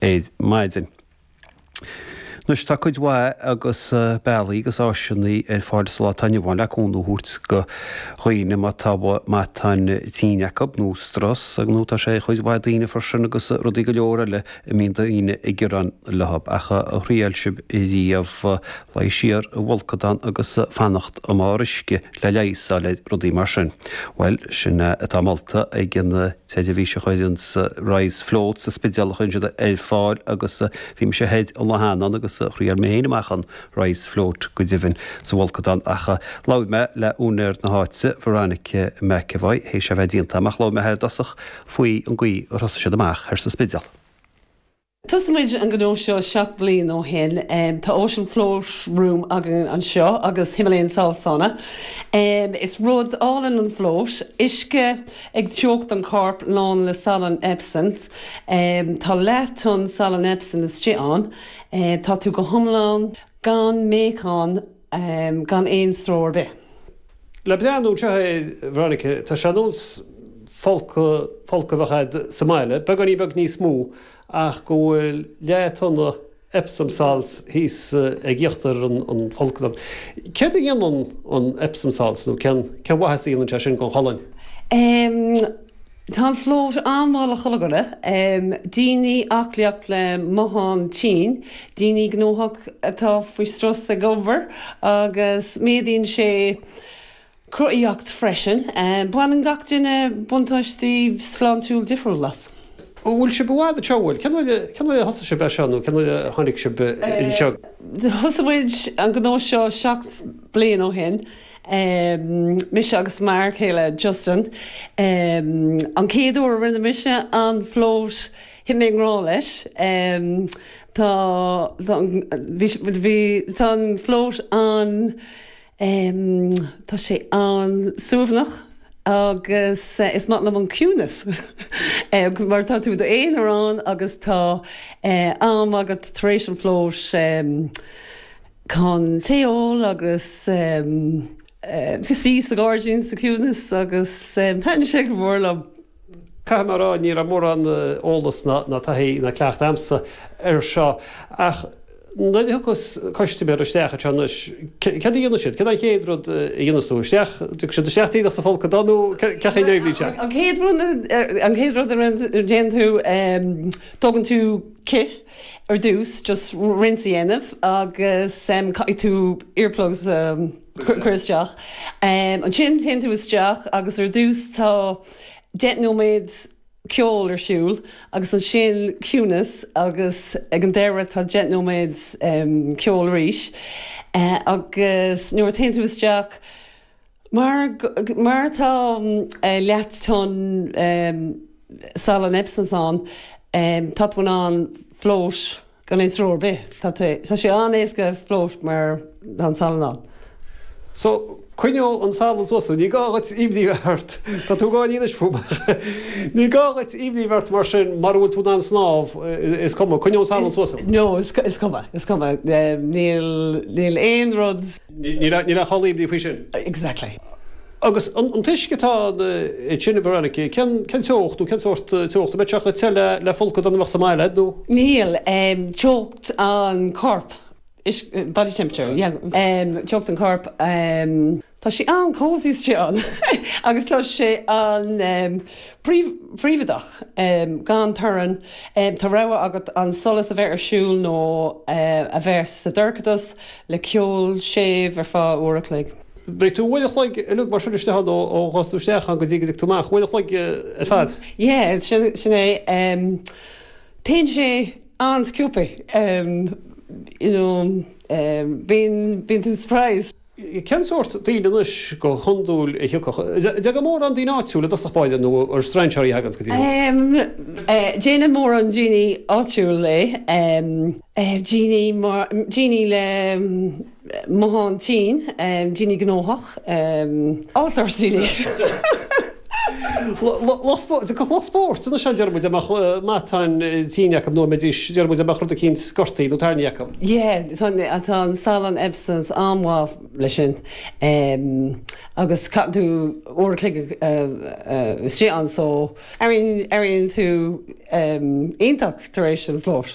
ar maidin. Anois tá cuid mhaith agus bealaí agus áiseanna ar fáil sa lá atá inniu ann le cúnamh a thabhairt go dhaoine má tá matáin tinne acu nó strus nó tá sé ar chuid mhaith daoine freisin agus rudaí go leor eile a mbíonn daoine ag gearán leo. Ach ar thriail sibh riamh luí siar i bhfolcadán agus fanacht ar bharr uisce? le leigheas a fháil ar rudaí mar sin. Bhuel, sin é atá molta ag an tseirbhís a chuireann Rise Float sa Spidéal a chuireann siad ar fáil agus bhí mise thoir an lá cheana ann agus thriail mé féin amach an Rise Float, go deimhin, sa bhfolcadán ach labhair mé le úinéir na háite, Veronica McEvoy, théis a bheith déanta amach, labhair mé léi i dtosach faoi an gcaoi ar thosaigh siad amach thoir sa Spidéal. Thosaigh muid an gnó seo seacht mbliain ó shin. Tá Ocean Float Room againn anseo agus Himalayan Salt Sauna. Is rud álainn an float, uisce ag teocht an choirp lán le salann Epsom. Tá leath tonna salann Epsom istigh ann. Tá tú go hiomlán gan meáchan. gan aon stró ar bith. Le breathnú air seo, a Veronica, tá sé ar nós folcadh a bheith agat sa mbaile, beagáinín beag níos mó, ach go bhfuil leath tonna Epsom salts thíos ag íochtar an fholctha. Céard a dhéanann an Epsom salts nó cén mhaitheas a dhéanann sé sin don cholainn? Tá an float an-mhaith le haghaidh chuile dhuine, daoine aclaíocht le matáin tinn, daoine gnóthach atá faoi strus ag obair, agus méadaíonn sé cruthaitheacht freisin. Baineann gach duine buntáistí sláintiúil difriúil as. An bhfuil sibh i bhfad anseo, an bhfuil? Cén uair a thosaigh sibh é seo nó cén uair a tháinig sibh anseo? Thosaigh muid an gnó seo seacht bliain ó shin. mise agus m'fhear céile Justin. An chéad uair a rinne mise an float, thit mé i ngrá leis. Tá an float an, tá sé an-suaimhneach agus is maith liom an ciúnas mar tá tú i d'aonar ann agus tá am agat tar éis an float, Chun tae a ól agus suí sa ghairdín sa chiúnas agus thaitin sé go mór liom. Caithfidh mé a rá, ní raibh mórán eolas ná taithí ná cleachtadh agamsa air seo ach nuair a thiocfas custaiméir isteach anseo anois, céard a dhéanfaidh siad? Céard é an chéad rud a dhéanfas tú? Isteach, tiocfaidh siad isteach díreach sa bhfolcadán nó céard é an chéad rud a dhéanfaidh siad? An chéad rud a dhéanann tú, tógann tú cith. Ar dtús, just rinse a dhéanamh agus caithfidh tú earplugs a chur isteach. Ansin téann tú isteach agus ar dtús tá deich nóiméad ceol ar siúl agus ansin ciúnas agus ag an deireadh tá deich nóiméad ceol arís agus nuair a théann tú isteach, Mar mar tá leath tonna salann Epsoms ann, tá tú in ann float gan aon stró ar bith. Tá tú, tá sé an-éasca float mar tá an salann ann. So, coinneoidh an salann suas thú. Ní gá dhuit imní bheith ort. Tá tú gá dhílis fúm. Ní gá dhuit imní bheith ort mar sin, mura bhfuil tú in ann snámh, is cuma, coinneoidh an salann suas thú. No, is cuma, is cuma. Níl, níl aon rud. Níl aon chall imní faoi sin. Exactly. Agus an t-uisce atá ansin, a Veronica, cén teocht nó cén sórt teocht? An mbeidh sé chomh te le folcadán a bheadh sa mbaile a'd nó? Níl. Teocht an choirp, body temperature, yeah. Teocht an choirp, tá sé an-cosy istigh ann agus tá sé an, príobháideach, gan torann. Tá rogha agat an solas a bheith ar siúl nó a bheith sa dorchadas. le ceol séimh ar feadh uair a chloig. Beidh tú uair a chloig uilig mar sin istigh ann ó ghabhfas tú isteach ann go dtí go dtiocfaidh tú amach, uair a chloig ar fad. Yeah, sin é. Téann sé an-sciobthaí, you know, bíonn tú surprised. Cén sórt daoine anois go hiondúil a thiocfadh? An dtagann mórán daoine áitiúla i dtosach báire nó an strainséirí a thaganns go dtí thú? Déanann mórán daoine áitiúla é. Daoine le matán tinn, daoine gnóthach, all sorts really. Lucht spóirt, cúpla lucht spóirt, anois, deir muid a mbeadh matáin tinn acu, nó mbeidís, deir muid a mbeadh rud eicínt, gortaithe nó tarraingthe acu. Yeah, tá an salann Epsom's an-mhaith leis sin. Agus caitheann tú uair a chloig istigh ann so airíonn tú iontach tar éis an float.